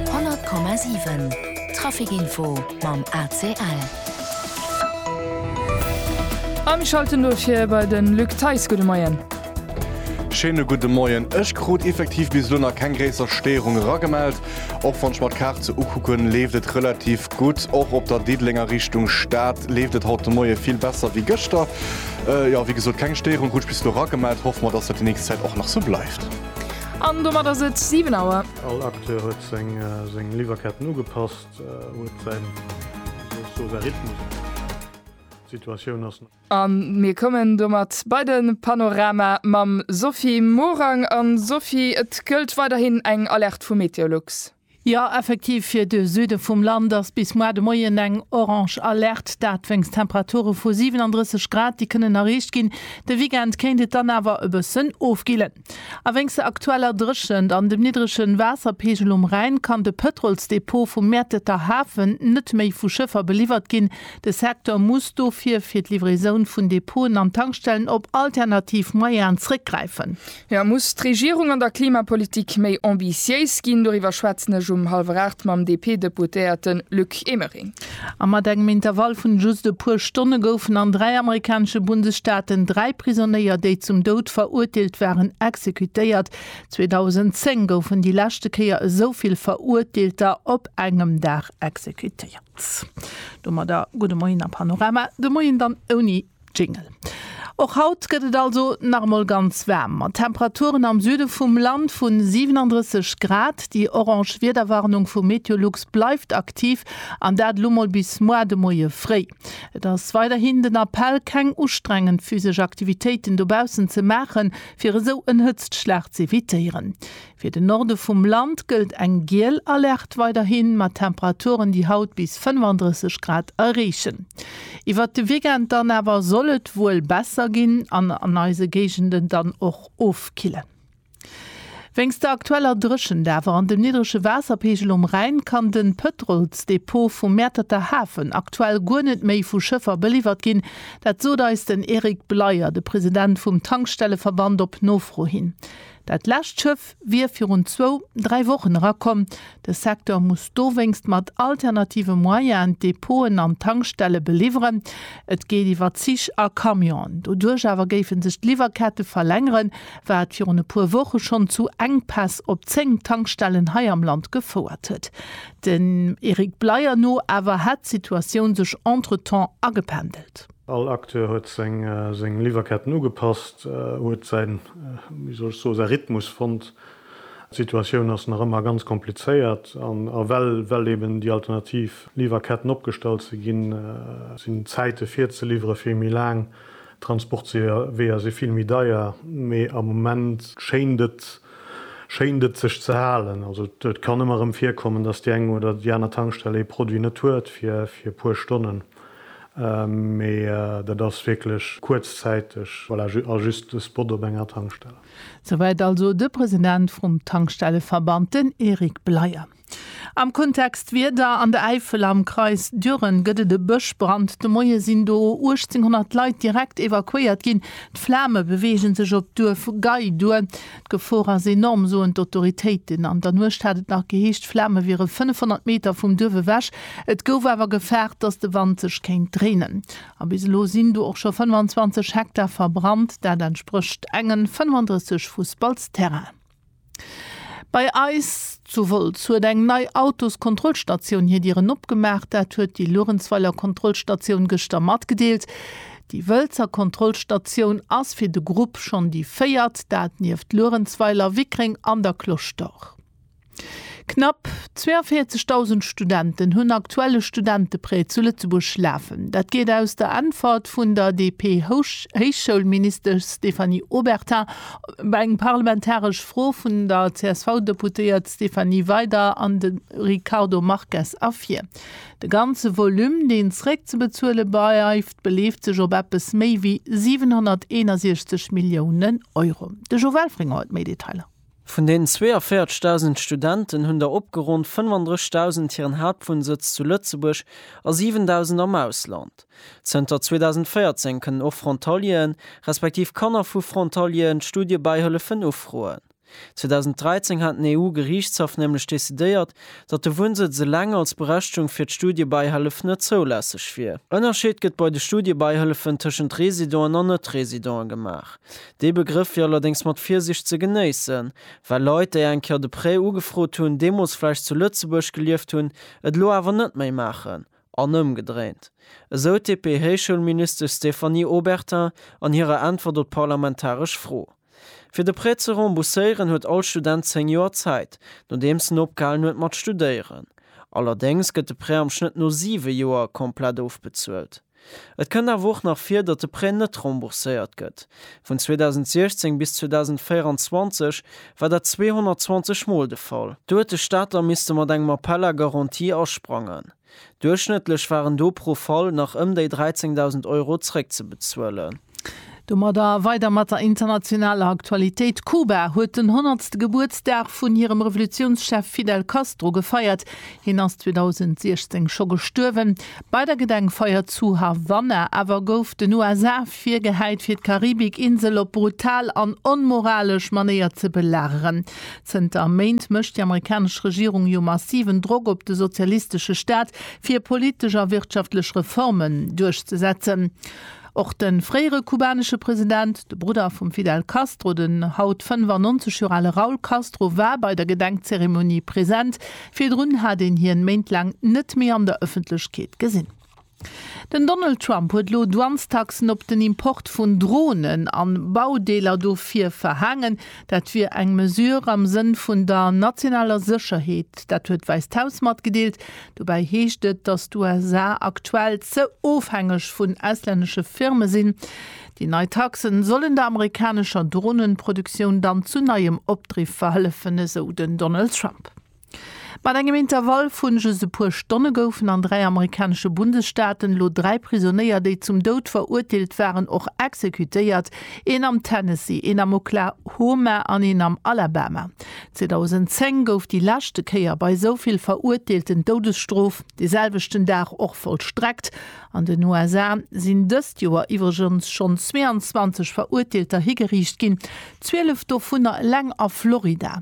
100,7 Trafic-Info mam ACL. A mir schalten elo fir bei de Luc Theis. Gudde Moien. Schéine gudde Moien. Ech krut effektiv bis elo nach keng gréisser Stéierung eragemellt. Och wann ech mer d'Kaart sou ukucken, leeft et relativ gutt. Och op der Diddelenger Richtung Stad leeft et haut de Moie vill besser wéi gëschter. Jo, wéi gesot, keng Stéierung krut ech bis elo eragemellt. Hoffe mer, dass dat déi nächst Zäit och nach sou bleift. An domat ass et 7 Auer. All Acteur huet seng Liwwerketten ugepasst, huet säin Rhythmus. D'Situatioun ass. A mir kommen domat bei de Panorama mam Sophie Morang. A Sophie, et gëllt weiderhin eng Alerte vu Meteolux. Jo effektiv, fir de Süde vum Land ass bis moar de Moien eng Orange Alerte, dat wéinst Temperature vu 37 Grad, déi kënnen erreecht ginn. De Weekend kéint et dann awer e bëssen ofkillen. A wéinst der aktueller Dréchent an dem niddrege Waasserpeegel um Rhäin kann de Pëtrolsdepot vum Mäerteter Hafen net méi vu Schëffer beliwwert ginn. De Secteur muss dofir fir d'Livraisoun vun Depoten an Tankstellen op alternativ Moyeaen zréckgräifen. Jo, muss d'Regierung an der Klimapolitik méi ambitiéis ginn. Doriwwer schwätzen ech um hallwer aacht mam DP-Deputéierte Luc Emering. A mat engem Intervall vun just e puer Stonne goufen an dräi amerikanesche Bundesstaaten dräi Prisonéier, déi zum Doud verurteelt waren, exekutéiert. 2010 goufen déi leschte Kéier esou vill Verurteelter op engem Dag exekutéiert. Domadder gudde Moien a Panorama de Moien dann ouni Jingle. Och haut gëtt et also nach emol ganz waarm, mat Temperaturen am Süde vum Land vu 37 Grad. Déi orange Wiederwarnung vu Meteolux bleift aktiv, an dat elo mol bis moar de Moie fréi. Et ass weiderhin den Appell, keng ustrengend physesch Aktivitéiten dobaussen ze maachen, fir esou en Hëtztschlag z'evitéieren. Fir de Norde vum Land gëllt eng giel Alerte weiderhin, mat Temperaturen, déi haut bis 35 Grad erreechen. Iwwert de Weekend dann awer soll et wuel besser ginn an an eise Géigenden dann och ofkillen. Wéinst der aktueller Dréchent awer an dem niddrege Waasserpeegel um Rhäin kann de Pëtrolsdepot vum Mäerterter Hafen aktuell guer net méi vu Schëffer beliwwert ginn. Dat sot eis den Eric Bleyer, de President vum Tankstelleverband, op Nofro hin. Dat lescht Schëff wier virun zwou, dräi Wochen erakomm. De Secteur muss dowéinst mat alternative Moyenen d'Depoten an d'Tankstelle beliwweren. Et geet iwwer Zich a Camionen. Doduerch awer géife sech d'Liwwerkette verlängeren, wat virun e puer Woche schonn zu Enkpäss op 10 Tankstellen hei am Land gefouert huet. Dem Eric Bleyer no awer hätt d'Situatioun sech entretemps agependelt. All Acteur huet seng Liwwerketten ugepasst, huet säin, wéi soll ech soen, säi Rhythmus fonnt. D'Situatioun ass nach ëmmer ganz komplizéiert an well eben déi alternativ Liwwerketten opgestallt si ginn, sinn d'Zäite fir ze liwwere vill méi laang, d'Transportweeër si vill méi deier. Mee am Moment schéint et, schéint et sech ze halen. Also et kann ëmmer erëm virkommen, datt déi eng oder déi aner Tankstell ee Produit net huet fir e puer Stonnen. Mee dat ass wierklech kuerzzäiteg a just e Spot op enger Tankstell. Souwäit also de President vrum Tankstelleverband, den Eric Bleyer. Am Kontext Wieder, An der Äifel am Kreis Düren gëtt et e Bëschbrand. De Moie sinn do 1.800 Leit direkt evakuéiert ginn. D'Flame beweege sech op d'Duerf Gey duer. D'Gefor ass enorm, soen d'Autoritéiten. An der Nuecht hat et nach geheescht, d'Flame wiere 500 Meter vum Duerf ewech. Et gouf awer gefaart, datt de Wand sech kéint dréinen. A bis elo sinn do och scho 25 Hektar verbrannt. Dat entsprécht engen 35 Fussballs Terrainen. Bei eis zu Wolz huet eng nei Autoskontrollstatioun hir Dieren opgemaach. Dat huet déi Luerenzweiler Kontrollstatioun gëschter matgedeelt. Déi Wëlzer Kontrollstatioun ass fir de Grupp schonn déi véiert, dat nieft Luerenzweiler, Wickreng an der Cloche d'Or. Knapp 42.000 Studenten hunn aktuell e Studenteprêt zu Lëtzebuerg lafen. Dat geet aus der Äntwert vun der DP-Héichschoulministesch Stéphanie Obertin op eng parlamentaresch Fro vun der CSV-Deputéiert Stéphanie Weider an dem Ricardo Marques ervir. De ganze Volume, deen zréckzebezuele bleift, beleeft sech op eppes méi wéi 761 Millioune Euro. De Jo Welfring huet méi Detailer. Vun den 42.000 Studenten hunn der opgeronnt 35.000 hiren Haaptwunnsëtz zu Lëtzebuerg a 7.000 am Ausland. Zënter 2014 kënnen och Frontalieren, respektiv Kanner vu Frontalieren, d'Studiebäihëllefen ufroen. 2013 hat den EU-Geriichtshaff nämlech decidéiert, datt de Wunnsëtz eleng als Berechtigung fir d'Studiebäihëllef net zoulässeg wier. Ënnerscheet gëtt bei de Studiebäihëllefen tëschent Residenten an Net-Residenten gemaach. Dee Begrëff wier allerdéngs mat Virsiicht ze genéissen, well Leit, déi eng Kéier de Prêt ugefrot hunn, deemools vläicht zu Lëtzebuerg gelieft hunn, et elo awer net méi maachen, an ëmgedréint, esou d'DP-Héichschoulministesch Stéphanie Obertin an hirer Äntwert op d'parlamentaresch Fro. Fir de Prêt ze rembourséieren huet all Student 10 Joer Zäit, nodeems en opgehalen huet mat studéieren. Allerdéngs gëtt de Prêt am Schnëtt no 7 Joer komplett ofbezuelt. Et kënnt awer och nach vir, datt de Prêt net rembourséiert gëtt. Vun 2016 bis 2024 war dat 220 Mol de Fall. Do huet de Staat da misste mat engem Appel à garantie asprangen. Duerchschnëttlech waren do pro Fall nach ëm déi 13.000 Euro zréckzebezuelen. Domadder weider mat der internationaler Aktualitéit, Kuba huet den honnertste Gebuertsdag vun hirem Revolutiounschef Fidel Castro gefeiert. Hien ass 2016 scho gestuerwen. Bei der Gedenkfeier zu Havanna awer gouf den USA virgehäit fir d'Karibikinsel op brutal an onmoralesch Manéier ze belageren. Zënter Méint mécht déi amerikanesch Regierung jo massiven Drock op de sozialistesche Staat, fir politesch a wirtschaftlech Reformen duerchzesetzen. Och de fréiere kubanesche President, de Brudder vum Fidel Castro, den haut 95 Joer ale Raul Castro war bei der Gedenkzeremonie present. Virdrun hat een hien Méint laang net méi an der Ëffentlechkeet gesinn. Den Donald Trump huet elo Douanestaxen op den Import vun Dronen a Baudeeler dofir verhaangen. Dat wier eng Mesure am Sënn vun der nationaler Sécherheet. Dat huet d'Wäisst Haus matgedeelt. Dobäi heescht et, datt d'USA aktuell ze ofhängeg vun auslännesche Firme sinn. Déi nei Taxen sollen der amerikanescher Droneproduktioun dann zu neiem Opdriff verhëllefen, esou den Donald Trump. Mat engem Intervall vun just e puer Stonne goufen an dräi amerikanesche Bundesstaaten elo dräi Prisonéier, déi zum Doud verurteelt waren, och exekutéiert, een am Tennessee, een am Oklahoma an een am Alabama. 2010 gouf déi leschte Kéier bei esou vill Verurteelten d'Doudesstrof de selwechten Dag och vollstreckt. An den USA sinn dëst Joer iwwregens schonn 22 Verurteelter higeriicht ginn, 12 dovunner eleng a Florida.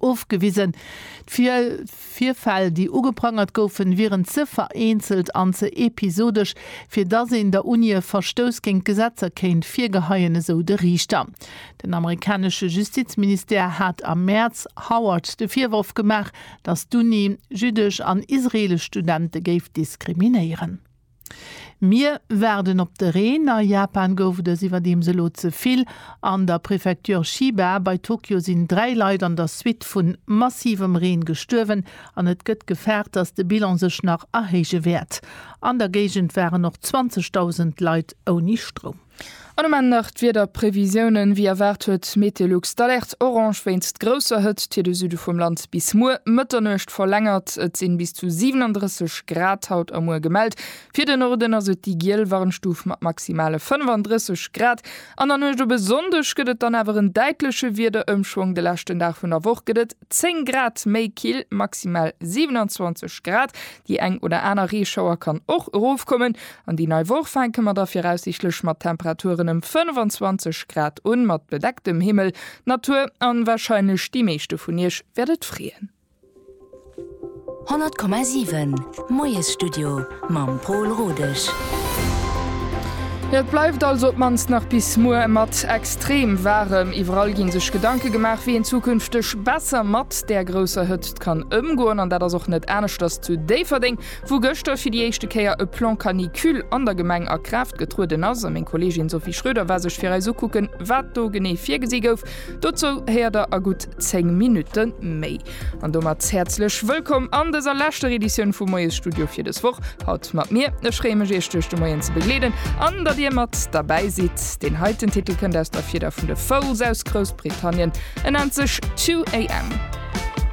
ofgewisen. D'Virfäll, déi ugeprangert goufen, wieren ze vereenzelt an ze episodesch, fir datt een der Uni e Verstouss géint d'Gesetzer kéint virgeheien, esou de Riichter. Den amerikanesche Justizministère hat am Mäerz Howard de Virworf gemaach, datt d'Uni jüddesch an israeelesch Studente géif diskriminéieren. Mir waarden op de Reen. A Japan gouf et es iwwerdeems elo ze vill. An der Prefecture Chiba bei Tokio sinn dräi Leit an der Suite vu massivem Reen gestuerwen an et gëtt gefaart, dass de Bilan sech nach erhéije wäert. An der Géigend waren och 20.000 Leit ouni Stroum. An um Enn nach d'Wiederprevisiounen, Wéi erwaart huet Meteolux d'Alerte orange wéinst grousser Hëtzt fir de Süde vum Land bis muer Mëtternuecht verlängert. Et sinn bis zu 37 Grad haut a muer gemellt. Fir de Norden ass et déi giel Warnstuf mat maximale 35 Grad. An der Nuecht op e Sonndeg gëtt et dann awer en däitleche Wiederëmschwong, de leschten Dag vun der Woch gëtt et 10 Grad méi kill, maximal 27 Grad. Déi eng oder aner Reeschauer kann och erofkommen. An déi nei Woch fänke mer da viraussiichtlech mat Temperaturen ëm 25 Grad un, mat bedecktem Himmel, Natur an wahrscheinlech déi meeschte vun iech wäert et freeën. 100,7 Moiesstudio mam Pol Rodesch. Jo, et bleift also op d'mannst nach bis muer mat extrem waarem. Iwwerall ginn sech Gedanke gemaach, wéi een zukünfteg besser mat där grousser Hëtzt kann ëmgoen. An dat ass och net aneschters zu Déifferdeng. Wou gëschter fir déi éischte Kéier e Plan Canicule an der Gemeng a Kraaft getrueden ass, a meng Kolleegin Sophie Schroeder war sech fir eis ukucken, wat do genee virgesi gouf, dozou héiert der a gutt 10 Minutte méi. An domat häerzlech wëllkomm an dëser leschter Editioun vum Moiesstudio fir dës Woch. Haut mat mir. Ech freeë mech, iech duerch de Moien ze begleeden an datt dir mat derbäi sidd. Deen heiten Titel kënnt aus der Fieder vun de Foals aus Groussbritannien, en nennt sech Two AM.